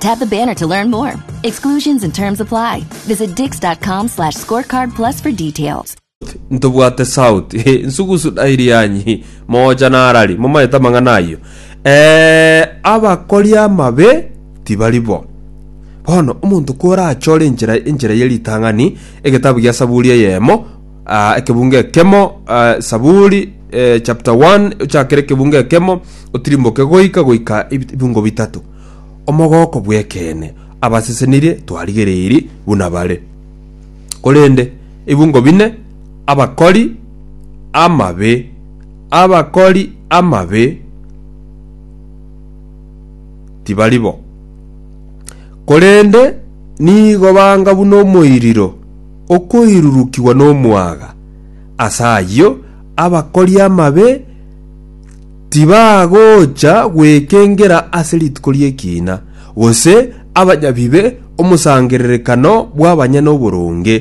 Tap the banner to learn more. Exclusions and terms apply. Visit dix.com slash scorecard plus for details. ntobwate south Eh, nsugusu dairi yanyi mocha narari momaete amang'ana ayio Eh, abakori amabe tibari bo bono omonto korachore enchera enchera ye ritang'ani egetabu gia saburi eyemo ah, ekebunga ekemo ah, saburi eh, chapter 1 ochakere ekebunga ekemo otirimboke goika goika ebit- ebingo bitato Omogooko bw'ekeene, abasesenirie twarigereirie buna bare. Korende ebungo bine, abakori amabe, abakori amabe tibari bo, korende nigo banga buna omoiriro okoirurukigwa nomwaga. Ase ayio abakori amabe Tibagocha gwekengera ase rituko ri'ekiina, gose abanyabibe, omosangererekano bw'abanyene oboronge.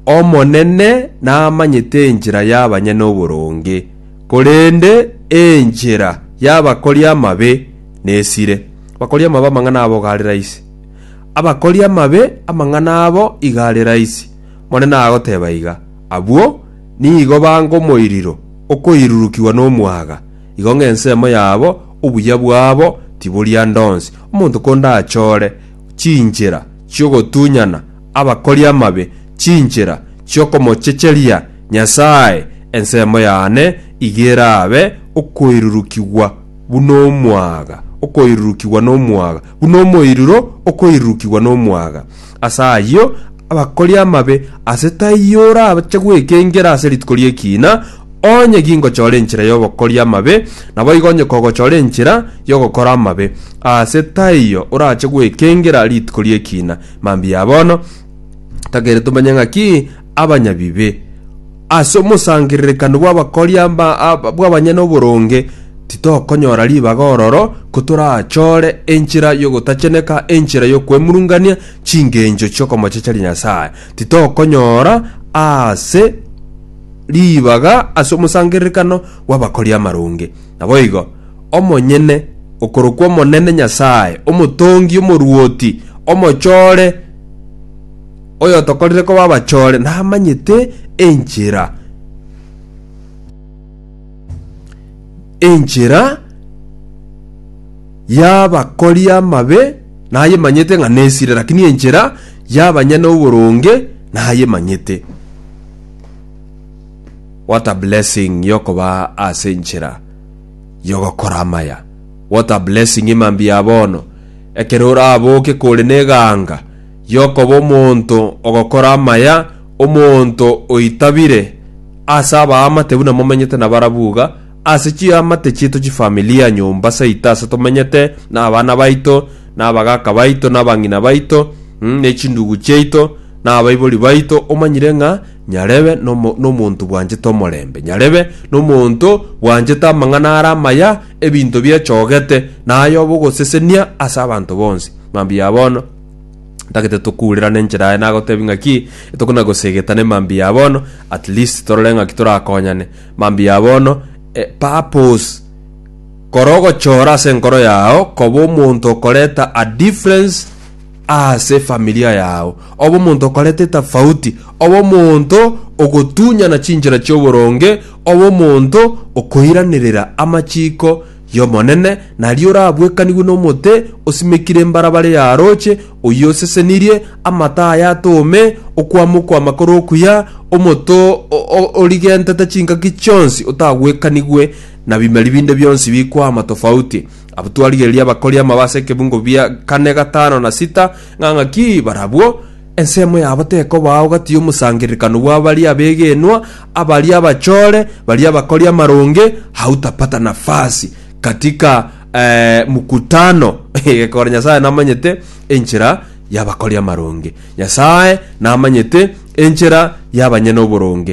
Omonene namanyete enchera y'abanyene oboronge, korende enchera y'abakori amabe nesire. Abakori amabe amang'ana abo iga are raisi, abakori amabe amang'ana abo iga are raisi, Omonene agoteba iga. Abwo Nigo bangomoiriro okoirurukigwa nomwaga, igo ng'ensemo yabo obuya bwabo tiboria ndonsi. Omonto konde achore chinchera chi'ogotunyana abakori amabe, chinchera chi'okomochecheria Nyasae, ensemo yane iga erabe okoirurukigwa buna omwaga, okoirurukigwa nomwaga, buna omoiruro okoirurukigwa nomwaga. Ase ayio, abakori amabe aase taiyo orache gwekengera ase rituko ri'ekiina, onye gingochora enchera y'obokori amabe, naboigo onye kogochora enchera y'ogokora amabe, aase taiyo orache gwekengera rituko ri'ekiina. Mambia bono, tokere tomenye ng'aki abanyabibe. Ase omosangererekano bw'abakori amba bw'abanyene oboronge titokonyora ribaga ororo kotorachore enchera y'ogotacheneka, enchera y'okwemurungania chingencho chi'okomochecheria Nyasae. Titokonyora ase ribaga ase omosangererekano bw'abakori amaronge. Naboigo, omonyene okorokwa Omonene Nyasae, Omotongi, Omoruoti, Omochore, Oyotokorire koba abachore namanyete enchera, enchera y'abakori amabe nayemanyete ng'a nesire, lakini enchera y'abanyene oboronge nayemanyete. What a blessing yokoba ase enchera yogokora amaya. What a blessing emambia bono ekero oraboke kore neganga y'okoba omonto ogokora amaya, omonto oitabire ase abaamate buna momenyete na barabwo iga, ase chiamate chiaito chifamilia, nyomba saito ase tomenyete, na abana baito, na abagaaka baito, na abang'ina baito, mm, ne chindugu chiaito, na abaibori baito, omanyire ng'a Nyarebe nomo- nomonto bwanchete omorembe, Nyarebe nomonto bwanchete amang'ana are amaya, ebinto biachogete, na ay'obogosesenia ase abanto bonsi. Mambia bono. Tagete tokuurerane enchera aye nagotebi ng'aki etokona gosegetana emambia ya bono at least torore ng'aki torakonyane mambia ya bono eh, purpose kora ogochora ase enkoro yao koba omonto okoreta a difference ase familia yao oba omonto okoreta etafauti oba omonto ogotunyana chinchera chioboronge oba omonto okoiranerera amachiko y'Omonene, naria orabuekanigwe nomote osimekire mbarabare ya rooche, oyio osesenirie amato aye atoome okwama okw'amakoro okuya, omoto origentete chinkaki chionsi otagwekanigwe na bimeri binde bionsi bikwama tofauti. Abwo twarigereria abakori amabe ase ekebungo bia kane, gatano, na sita, ng'a ng'aki barabwo, ensemo yabo tekobao gati y'omosangererekano bw'abaria abegenwa, abaria abachore, baria abakori amaronge, hautapata nafasi katika eh, mkutano gekora nyasaye namanyete enchera yabakori amaronge nyasaye namanyete enchera yabanyene oboronge